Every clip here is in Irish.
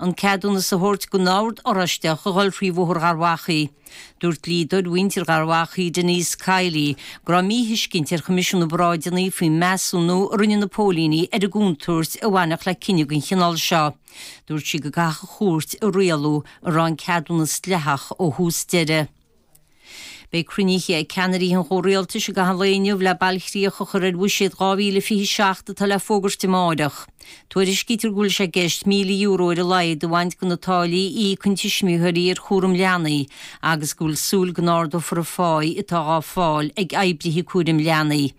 an ceadúnas a thabhairt gon Ord Oráisteach a dhul trí Bhóthar Gharbhachaidh. Dúirt dlíodóir mhuintir Gharbhachaidh, Denise Kiley, go raibh míthuiscint ar Choimisiún na bParáideanna faoin measúnú a rinne na póilíní ar an gcontúirt a bhainfeadh le cinneadh den chineál seo. Dúirt sí go gcaithfeadh an chúirt a rialú an raibh an ceadúnas dleathach ó thús deireadh. Beidh cruinnithe ag ceannairí an chomhrialtais i gcaitheamh an lae inniu le bailchríoch a chur ar Bhuiséad 2027 atá le fógairt amáireach. Tuairiscítear go bhfuil sé i gceist €1,000 ar a laghad a bhaint de na táillí a íocann tuismitheoirí ar chúram leanaí agus go bhfuil súil go n-ardófar an pháigh atá dhá fáil ag oibrithe cúraim leanaí.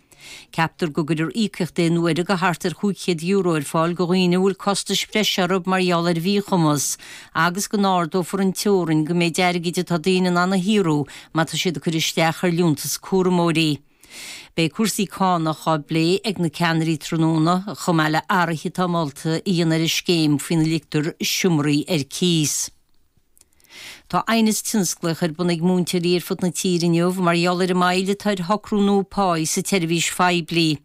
Ceaptar go gcuirfear íocaíocht aon uaire go thart ar chúig chéad euro ar fáil go dhaoine a bhfuil costais bhreise orthu mar gheall ar mhíchumas agus go n-ardófar an teorainn go méid airgid atá daoine in ann a shaothrú má tá siad ag cur isteach ar Liúntas Cúramóirí. Beidh cúrsaí cánach dhá bplé ag na ceannairí tráthnóna, chomh maith le athruithe atá molta a dhéanamh ar an scéim faoina ligtear seomraí ar cíos. Tá aighneas tionsclaíoch ar bun ag múinteoirí ar fud na tíre inniu mar gheall ar an moill atá ar shocrú nua páighe sa tseirbhís phoiblí.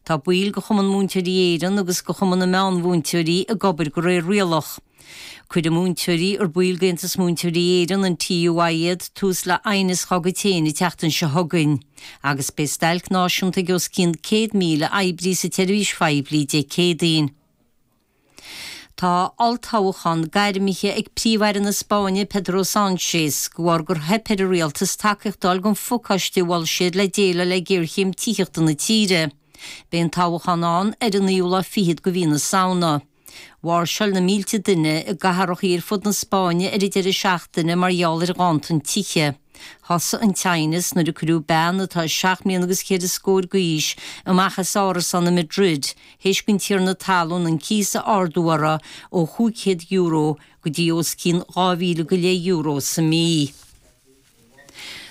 Tá baill de Chumann Múinteoirí Éireann agus de Chumann na Meánmhúinteoirí ag obair go réir rialach. Cuirfidh múinteoirí ar baill d'Aontas Múinteoirí Éireann, an TUI, iad tús le aighneas dhá gcuid féin an tseachtain seo chugainn agus beidh stailc náisiúnta ag os cionn 100,000 oibrí sa tseirbhís phoiblí Dé Céadaoin. Tá olltoghchán gairmithe ag Príomh-Aire na Spáinne, Pedro Sánchez, go bharr gur theip ar an rialtas tacaíocht a fháil gon phacáiste a mhol siad le déileáil le géarchéim tithíochta na tíre. Beidh an toghchán ann ar an naoú lá fichead go mhí na Samhna. Mháirseáil na mílte duine i gcathrachaí ar fud na Spáinne ar an deireadh seachtaine mar gheall ar ghanntan tithe. Thosaigh an t-aighneas nuair a cuireadh bean atá seacht mbliana agus ceithre scór d'aois amach as árasán i Madrid théis don tiarna talún an cíos a ardú uirthi ó chúig chéad euro go dtí os cionn dhá mhíle go leith euro sa mí.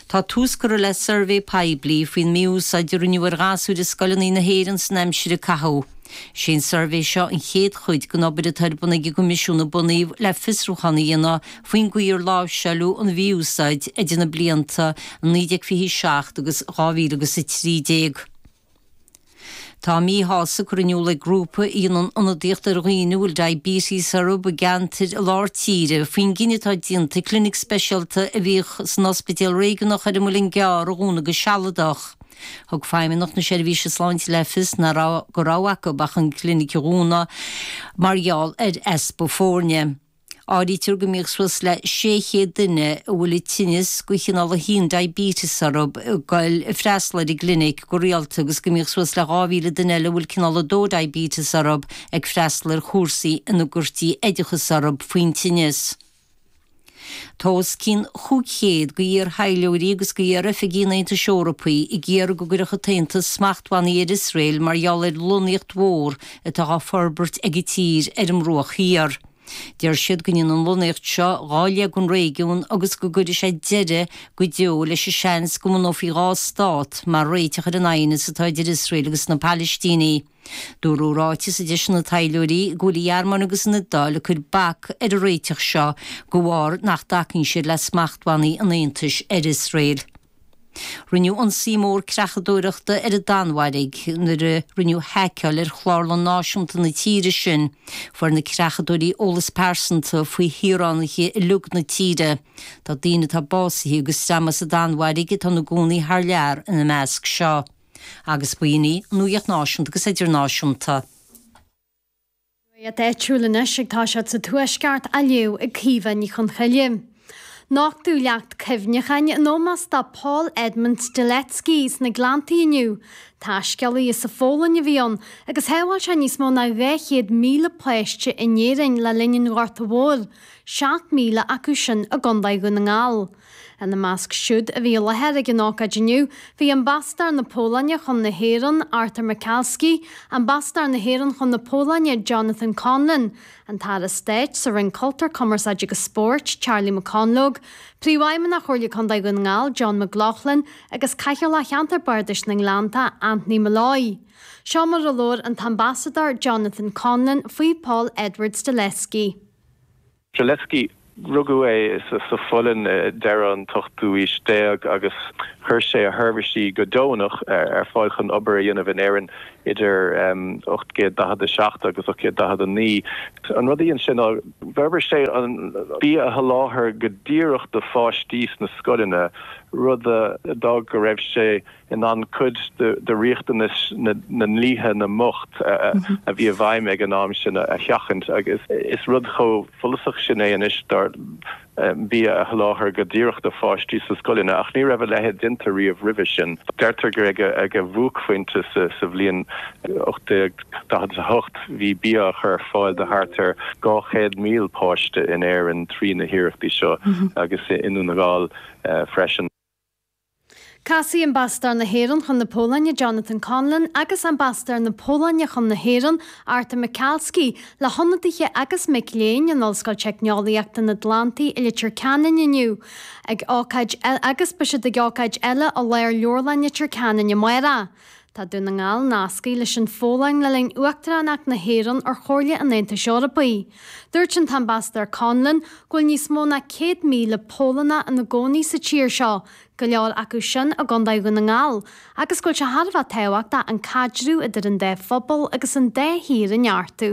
Tá tús curtha le suirbhé poiblí faoin mí-úsáid a rinneadh ar ghasúir i scoileanna na hÉireann san aimsir a caitheadh. Is é an suirbhé seo an chéad chuid den obair atá ar bun ag an gCoimisiún a bunaíodh le fiosrúchán a dhéanamh Faoin gcaoi ar láimhseáladh an mhí-úsáid idir na blianta 1927 agus 2013. Tá míshásamh curtha in iúl ag grúpa a dhéanann ionadaíocht ar dhaoine a bhfuil diabetes orthu i gceantar lár tíre faoin gcinneadh atá déanta clinic speisialta a bhíodh san Ospidéal Réigiúnach ar an Muileann gCearr a dhúnadh go sealadach. Thug Feidhmeannacht na Seirbhíse Sláinte le fios nach raibh go rogha acu ach an clinic a dhúnadh mar gheall ar easpa foirne. Áirítear go mbíodh suas le 600 duine a bhfuil an tinneas cineál 1 diabetes orthu ag goil i freastal ar an gclinic go rialta agus go mbíodh suas le 2,000 duine eile a bhfuil cineál 2 diabetes orthu ag freastal ar chúrsaí ina gcuirtí oideachas orthu faoin tinneas. Tá os cionn 500 de iar-thaidhleoirí agus de iar-oifigigh an Aontais Eorpaí ag iarraidh go gcuirfeadh an tAontas smachtbhannaí ar Iosrael mar gheall ar lonnaíocht mhór atá á forbairt ag an tír ar an mBruach Thiar. Deir siad go ndéanann an lonnaíocht seo dhá leath den réigiún agus go gcuirfidh sé deireadh go deo leis an seans go mbunófaí dhá stát mar réiteach ar an aighneas atá idir Iosrael agus na Palaistínigh. Dúradh i ráiteas a d'eisigh na taidhleoirí go bhfuil an Ghearmáin agus an Iodáil ag cur bac ar an réiteach seo de bharr nach dtacaíonn siad le smachtbhannaí an Aontais ar Iosrael. Rinneadh ionsaí mór creachadóireachta ar an Danmhairg nuair a rinneadh haiceáil ar chlárlann náisiúnta na tíre sin. Fuair na creachadóirí eolas pearsanta faoi shaoránaigh uilig na tíre. Tá daoine atá básaithe agus daoine as an Danmhairg atá ina gcónaí thar lear ina measc seo. Agus b'shin í an nuacht náisiúnta agus idirnáisiúnta. Nuacht áitiúil anois agus tá scéalta an Tuaiscirt á léamh ag Caoimhe Ní Chonchoille. Nochtadh leacht cuimhneacháin in ómós do Paul Edmund Strzelecki sna Gleanntaí inniu. Taiscéalaí as an Pholainn a bhí ann agus shábháil sé níos mó ná 200,000 páiste in Éirinn le linn an Ghorta Mhóir, 7,000 acu sin i gContae Dhún na nGall. Ina measc siúd a bhí i láthair ag an ócáid inniu, bhí Ambasadóir na Polainne chun na hÉireann, Artur Michalski, Ambasadóir na hÉireann chun na Polainne, Jonathan Conlon, an tAire Stáit sa Roinn Cultúir, Cumarsáide agus Spóirt, Charlie McConalogue, Príomhfheidhmeannach Chomhairle Contae Dhún na nGall, John McLaughlin, agus Cathaoirleach Cheantar Bardais na nGleannta, Anthony Molloy. Seo mar a labhair an tAmbasadóir Jonathan Conlon faoi Paul Edward Strzelecki. Strzelecki, rugadh é sa Pholainn i deireadh an ochtú haois déag agus chuir sé a sheirbhísí go deonach ar fáil chun obair a dhéanamh in Éirinn idir 1847 agus 1849. An rud a dhein sé ná d'fhorbair sé bia a sholáthar go díreach do pháistí sna scoileanna, rud a d'fhág go raibh sé in ann cuid de riachtanais na ndlíthe na mbocht a bhí i bhfeidhm ag an am sin a sheachaint agus is rud chomh follasach sin é anois dar ndóigh, bia a sholáthar go díreach do pháistí sna scoileanna ach ní raibh a leithéid déanta riamh roimhe sin. Deirtear gur ag a bhuaicphointe sa bhliain 1848 bhí bia á chur ar fáil do thart ar 200,000 páiste in Éirinn trí na hiarrachtaí seo agus i nDún na nGall freisin. Casfaidh Ambasadóir na hÉireann chun na Polainne, Jonathan Conlon, agus Ambasadóir na Polainne chun na hÉireann, Artur Michalski, le hionadaithe agus mic léinn in Ollscoil Teicneolaíochta an Atlantaigh i Leitir Ceanainn inniu ag ócáid agus beidh siad ag ócáid eile i Lárleabharlann Leitir Ceanainn amárach. Tá Dún na nGall nasctha leis an Pholainn le linn Uachtaránacht na hÉireann ar Chomhairle an Aontais Eorpaigh. Dúirt an tAmbasadóir Conlon go bhfuil níos mó ná 100,000 Polannach ina gcónaí sa tír seo, go leor acu sin i gContae Dhún na nGall, agus go bhfuil sé thar a bheith tábhachtach an caidreamh idir an dá phobal agus an dá thír a neartú.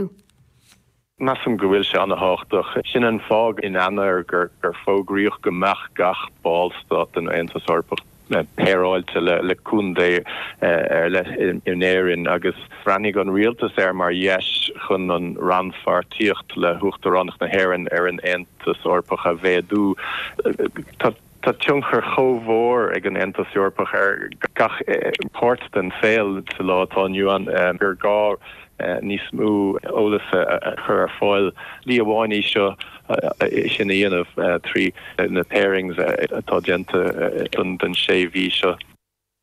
Measaim go bhfuil sé an-tábhachtach. Sin an fáth in Eanáir gur fógraíodh go mbeadh gach ballstát den Aontas Eorpach péireáilte le contae ar leith in Éirinn agus bhreathnaigh an rialtas air mar dheis chun an rannpháirtíocht le hUachtaránacht na hÉireann ar an Aontas Eorpach a mhéadú. Tá tionchar chomh mhór ag an Aontas Eorpach ar gach páirt den saol sa lá atá inniu ann gur gá níos mó eolais a chur ar fáil. Slí amháin í seo, é sin a dhéanamh trí na pairings atá déanta don sé mhí seo.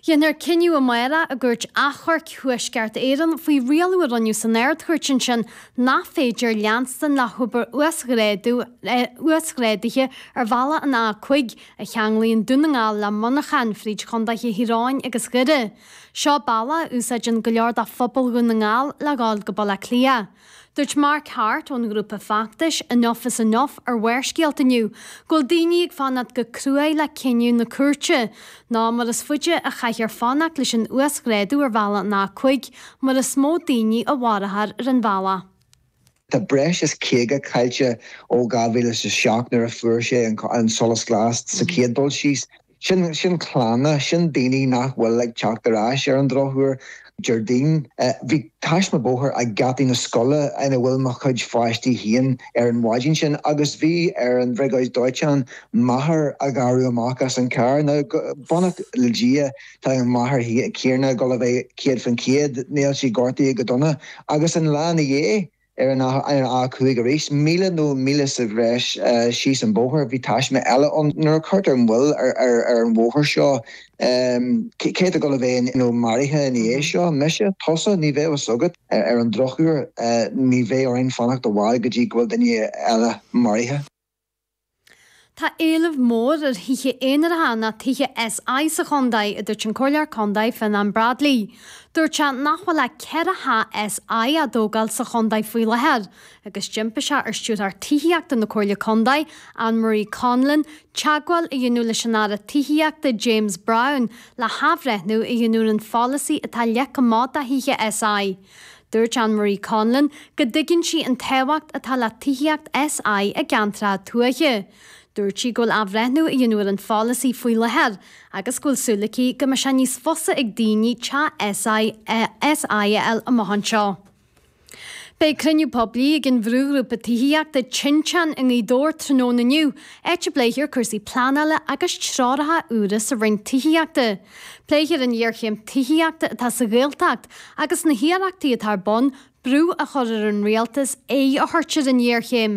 Dhéanfar cinneadh amárach i gCúirt Achomhairc Thuaisceart Éireann faoi rialú a rinneadh san Ard-Chúirt ansin nach féidir leanstan le hobair uasghrádaithe ar bhealach an A5 a cheanglaíonn Dún na nGall le Muineachán fríd Chondaetha Thír Eoghain agus Dhoire. Seo bealach a úsáideann go leor de phobal Dhún na nGall le dhul go Baile Átha Cliath. Dúirt Mark Harte ón ngrúpa feachtais Enough is Enough ar Bharrscéalta inniu go bhfuil daoine ag fanacht go cruaidh le cinneadh na cúirte, nó mar is faide a chaithfear fanacht leis an uasghrádú ar bhealach an A5, mar is mó daoine a mharófar ar an bhealach. Tá breis is caoga caillte ó 2007 nuair a fuair sé an solas glas sa chéad dul síos. Sin clanna, sin daoine nach bhfuil ag teacht ar ais ar an drochuair. Déardaoin, bhí taisme bóthair ag geataí na scoile ina bhfuil mo chuid páistí féin ar an mhaidin sin agus bhí ar an bhriogáid dóiteáin máthair a ghearradh amach as an charr. Now, beannacht le Dia, tá máthair Thiarna gul a bheith céad fán chéad, níl sí gortaithe go dona agus an lá ina dhiaidh, Ar an A5 arís, míle nó míle sa bhreis síos an bóthar, bhí taisme eile ann. Nuair a cuirtear moill ar an bhóthar seo, cé atá ag gul a bheith nó maraithe ina dhiaidh seo? Mise? Tusa? Ní bheadh fhios agat. Ar an drochuair, ní bheidh orainn fanacht i bhfad go dtí go bhfuil duine eile maraithe. Tá éileamh mór ar thithe aonaracha nó tithe SI sa chontae, a dúirt an Comhairleoir Contae Fionnán Bradley. Dúirt sé nach bhfuil ach ceithre theach SI á dtógáil sa chontae faoi láthair agus d'impigh sé ar Stiúrthóir Tithíochta na Comhairle Contae, Ann Marie Conlon, teagmháil a dhéanamh leis an Aire Tithíochta James Browne le hathbhreithniú a dhéanamh ar an pholasaí atá leagtha amach do thithe SI. Dúirt Ann Marie Conlon go dtuigeann sí an tábhacht atá le tithíocht SI i gceantracha tuaithe. Dúirt sí go bhfuil athbhreithniú á dhéanamh ar an pholasaí faoi láthair agus go bhfuil súil aici go mbeidh sé níos fusa ag daoine teach SI a fháil amach anseo. Beidh cruinniú poiblí ag an bhrúghrúpa tithíochta Tinteán i nGaoth Dobhair tráthnóna inniu, áit a bpléifear cúrsaí pleanála agus treoracha úra ón Roinn Tithíochta. Pléifear an ghéarchéim tithíochta atá sa Ghaeltacht, Agus na hiarrachtaí atá ar bun brú a chur ar an rialtas aghaidh a thabhairt ar an ghéarchéim,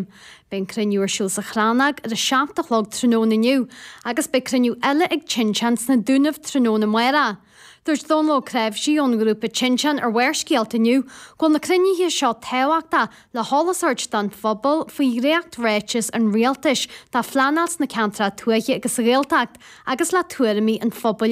beidh an cruinniú ar siúl sa Chrannóg ar a seacht a chlog tráthnóna inniu agus beidh cruinniú eile ag Tinteán sna Dúnaibh tráthnóna amárach. Dúirt Dónall Ó Cnáimhsí ón ngrúpa Tinteán ar Bharrscéalta inniu go bhfuil na cruinnithe seo tábhachtach le heolas a thabhairt don phobal faoi dhréacht-ráiteas an rialtais do phleanáil sna ceantracha tuaithe agus sa Ghaeltacht agus le tuairimí an phobail